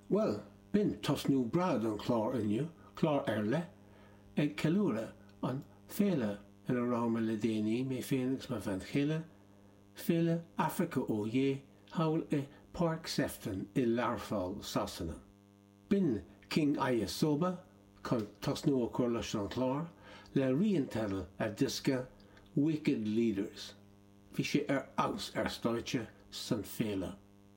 Bhuel, b'in tosnú breá don chlár inniu, clár ar leith, ag ceiliúradh an féile ina raibh mé le déanaí, mé féin agus mo bhean chéile, Féile Africa Oyé, thall i Páirc Sefton i Learpholl, Sasana. B'in King Ayisoba, chun tosnú a chur leis an chlár, le rian teidil a diosca Wicked Leaders. Bhí sé ar fheabhas ar stáitse san féile.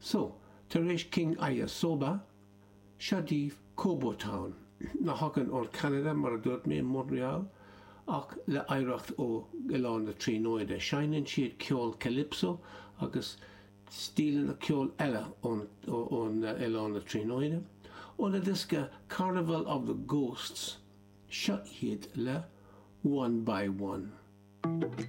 So, tar éis King Ayisoba, seo daoibh Kobo Town, a thagann ón Canada mar a dúirt mé, Montreal, ach le hoidhreacht ó Oileán na Tríonóide. Seinneann siad ceol Calypso agus stíleanna ceol eile ón Oileán na Tríonóide. Óna diosca Carnival of the Ghosts, seo iad le One by One.